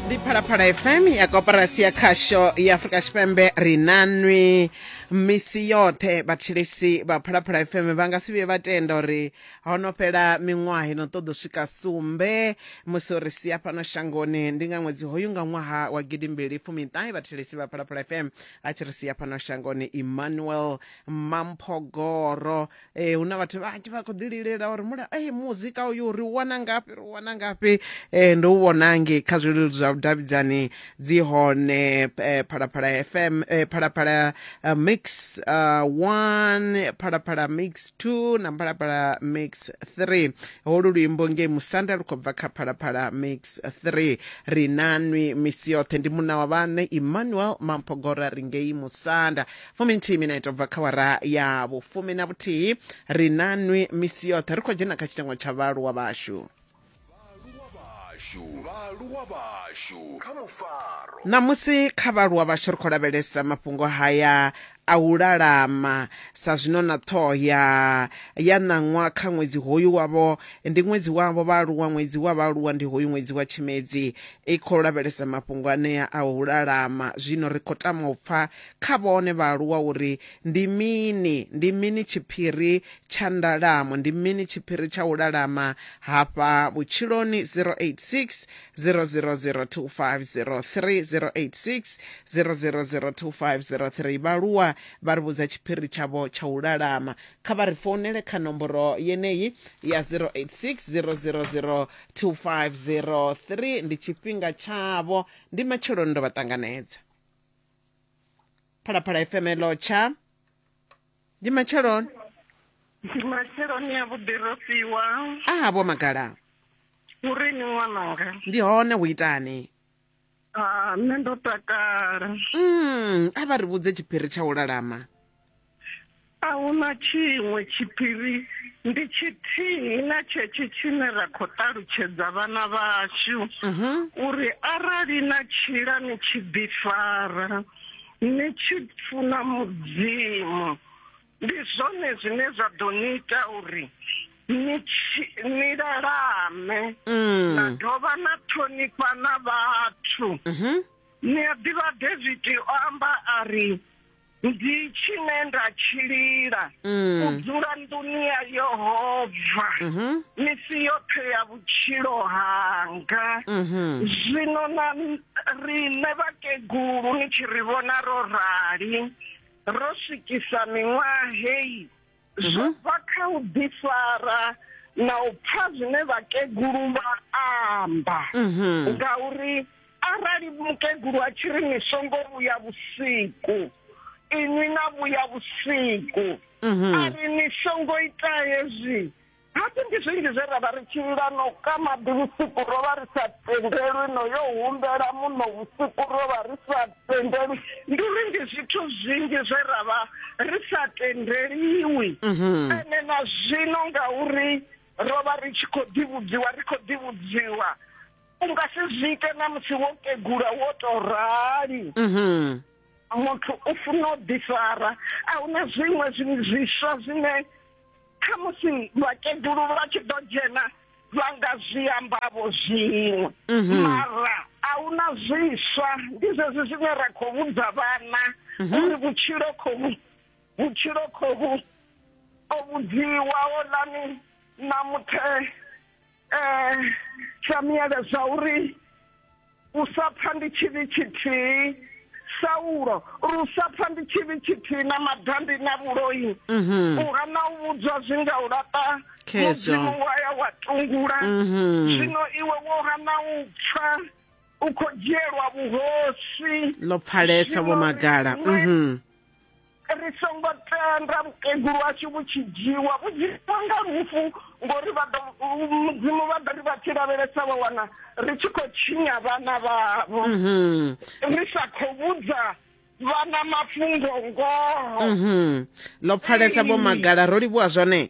ndi phalaphala fm ya koporasi ya khasho ya afurika tshipembe ri na nwi misi yoṱhe vhatshilisi vha phalaphala fm vha nga si vhuye vha tenda uri ho no fhela miṅwaha ino ṱoḓo swika sumbe musi uri sia fhano shangoni ndi nga ṅwedzi hoyu nga ṅwaha wa gidimbili fumiṱahe vhatshilisi vha phalaphala fm a tshi ri sia fhano shangoni emmanuel mamphogoro e hu na vhathu vhanzhi vha khou ḓi lilela uri mula e muzika uyu ri u wana ngafhi ri u wana ngafhi um ndo u vhona nge kha zwileludzi zwa vhudavhidzani dzi hone eh, phalaphala fm eh, phalaphala eh, mix uh, one phalaphala mix two na phalaphala mix three holu luimbo nge musanda lu khou bva kha phalaphala mix three ri nanwi misi yoṱhe ndi muna wa vhaṋe emmanuel mampogora ri ngei musanda fuminthihi minete ubva kha wara ya vhufumi na vhuthihi ri na nwi misi yoṱhe ri khou dzhena kha tshitengo tsha vhaaluwa vhashu ṋamusi kha vhaaluwa vhashu ri khou lavhelesa mafhungo haya a u lalama sa zwino na ṱhoho ya ya ṋaṅwa kha ṅwedzi hoyu wavho ndi ṅwedzi wavho vhaaluwa ṅwedzi wa vhaaluwa ndi hoyu ṅwedzi wa tshimedzi i khou lavhelesa mafhungo anea a u lalama zwino ri khou tama u pfa kha vhone vhaaluwa uri ndi mini, ndi mini tshiphiri tsha ndalamo, ndi mini tshiphiri tsha u lalama hafha vhutshiloni, 086 0002503086 00025030. Vhaaluwa vha ri vhudza tshiphiri tshavho tsha u lalama, kha vha ri founele kha nomboro yeneyi ya 086 00025030. Ndi tshifhinga tshavho, ndi matsheloni ndo vha ṱanganedza. phalaphala fm lotsha ndi matsheloni ndi matsheloni ya vhuḓi ro fhiwa aha vho magala uri ni ṅwananga ndi hone hu itani ah, nṋe ndo takala mm, a vha ri vhudze tshiphiri tsha u lalama A hu na tshiṅwe tshiphiri, ndi tshithihi na tshetshe tshine ra khou ṱalutshedza vhana vhashu mhm. uri arali na tshila ni tshi ḓifara ni tshi funa mudzimu ndi zwone zwine zwa ḓo ni ita uri ni lalame mm. na dovha na ṱhonifha na vhathu mhm. ni a ḓivha davidi o amba a ri ndi tshine nda tshi lila mm. u dzula nḓuni ya yehova mhm. misi yoṱhe ya vhutshilo hanga mhm. zwino na riṋe vhakegulu ni tshi ri vhona ro rali ro swikisa miṅwaha heyi zwo mhm. bva kha u ḓifara na u pfa zwine vhakegulu vha amba mhm. ngauri arali mukegulu a tshi ri ni songo vhuya vhusiku inwi na vhuya vhusiku mhm. a ri ni songo ita hezwi Musi ndi zwinzhi zwe ra vha ri tshi ila no ka maḓi vhusiku, ro vha ri sa tendelwi no yo humbela muṋo vhusiku, ro vha ri sa tendelwi. Ndi uri ndi zwithu zwinzhi zwe ra vha ri sa tendeliwi. Mhm. Ene na zwino ngauri ro vha ri tshi khou ḓivhudziwa, ri khou ḓivhudziwa. U nga si zwi ite na musi wo kegula wo tou rali. Mhm. Muthu u funa u ḓifara. A hu na zwiṅwe zwi- zwiswa zwine kha musi vhakegulu vha tshi ḓo dzhena vha nga zwi ambavho zwiṅwe mhm. mara a hu na zwiswa ndi zwezwi zwine ra khou vhudza vhana mhm. uri vhutshilo khohu vhutshilo khohu o vhudziwa o lani na muthe um eh, samiele zwa uri u sa pfa ndi tshivhi tshithihi saulo ri u sa pfa ndi tshivhi tshithihi na madandi na vhuloi mhm. u hana u vhudzwa zwi nga u laṱa mudzimu wa ya wa tungula mhm. zwino iwe wo hana u pfa u khou dzhielwa vhuhosi ḽo pfalesa vho magala mhm. ri songo tenda vhukegulu washu vhu tshi dzhiwa vhu dzhiwa nga lufu ngori vha ḓo mudzimu vha ḓo ri vha tshi lavhelesa vha wana ri tshi khou tshinya vhana vhavho mhm. ri sa khou vhudza vhana mafhungo ngoho mhm. ḽo pfalesa vho magala ro livhuwa zwone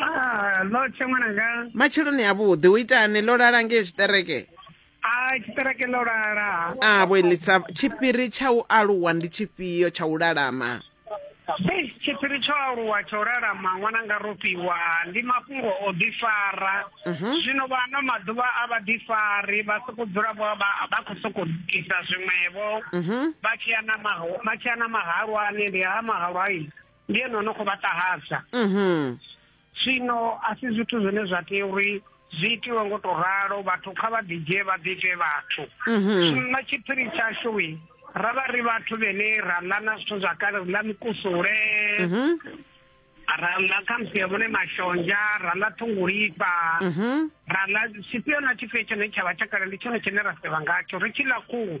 Ah, lo tshe ṅwananga matsheloni avhuḓi u itani ḽo lala ngei zwiṱereke a tshiṱereke ḽo lala a vhuelisa tshiphiri tsha u aluwa ndi tshifhio tsha u lalama Ei, tshiphiri tsho aluwa tsha u lalama ṅwananga ro fhiwa ndi mafhungo o ḓifara zwino vha ano maḓuvha a vha ḓifari vha soko dzula vho vha vha khou sokou ita zwiṅwevho vha tshi ya na maho- vha tshi ya na mahalwani ndi ha mahalwai ndi ene o no khou vha ṱahadza mhm. zwino a si zwithu zwine zwa tea uri zwi itiwe ngo to ralo vhathu kha vha ḓidzhie vha ḓiite vhathu mhm. zwino na tshiphiri tshashu ra vha ri vhathu vhene ra ḽa na zwithu zwa kale ri ḽa mikusule mhm. ra ḽa khamusi ya vhone mashonzha ra ḽa ṱhungulifha ra ḽa tshifhio na tshifhio tshone tsha vha tsha kale ndi tshone tshine ra sevha ngatsho ri tshi ḽa khuhu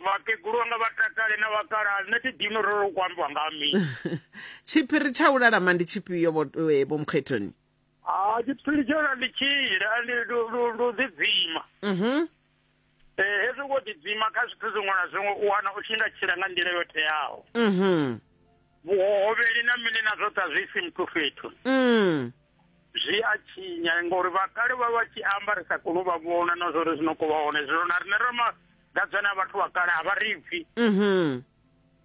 vhakegulu vhanga vha takale na vhakalaha nṋe thi dini uri ri khou ambiwa nga mi tshiphiri tsha u lalama ndi tshifhio vho eh, vho mukhethoni ha tshiphiri tsha u lalama ndi tshile ndi u ḓidzima mhm eh hezwi wo ḓidzima kha zwithu zwiṅwe na zwiṅwe u wana u tshi nga tshila nga nḓila yo teaho mhm vhuhohovheli na mini na zwoṱhe a zwi isi muthu fhethu mm zwi a tshinya ngori vha kale vha vha tshi amba ri sa koni u vha vhona na zwori zwi no kho vha hone zwino na rine ra magadzana a vhathu vha kale a vha ri pfi mhm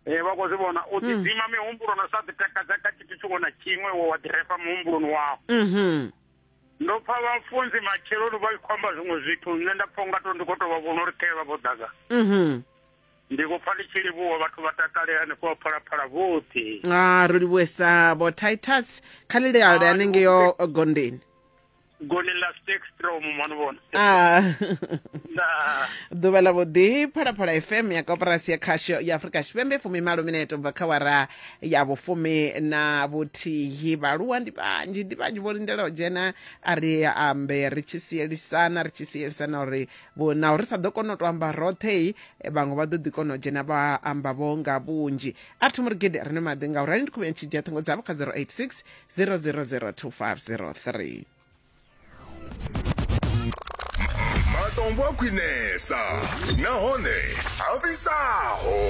eh vha khou zwi vhona u mm. ḓidzima mihumbulo na sa ḓitakadza kha tshithu tshiṅwe na tshiṅwe wo wa ḓirefa muhumbuloni wao mhm. ndo pfa vhafunzi matsheloni vha khou amba zwiṅwe zwithu nṋe nda pfa unga to ndi khou tou vha vhona uri khae vha vho ḓaga mhm. ndi khou pfa ndi tshi livhuwa vhathu vha takale hanefho vha phalaphala vhoṱhe a ro livhuwesa vho titus kha lileale anengeyo gondeni goni la stekstrom mano vona a ndaa ḓuvha ḽa vhuḓi phalaphala fm ya koporasi ya khasho ya afurika tshipembe fumi malo mineto bva kha wara ya vhufumi na vhuthihi vhaaluwa ndi vhanzhi ndi vhanzhi vho lindela u dzhena a ri ambe ri tshi sielisana ri tshi sielisana uri vho naho ri sa ḓo kona u to amba roṱhe vhaṅwe vha ḓo ḓi kona u dzhena vha amba vho nga vhunzhi a thi murigede rine maḓi nga u rali ndi khuvheni tshi dzhia ṱhingo dzavho kha 086 0002503 matombo a khwinesa nahone a vhisaho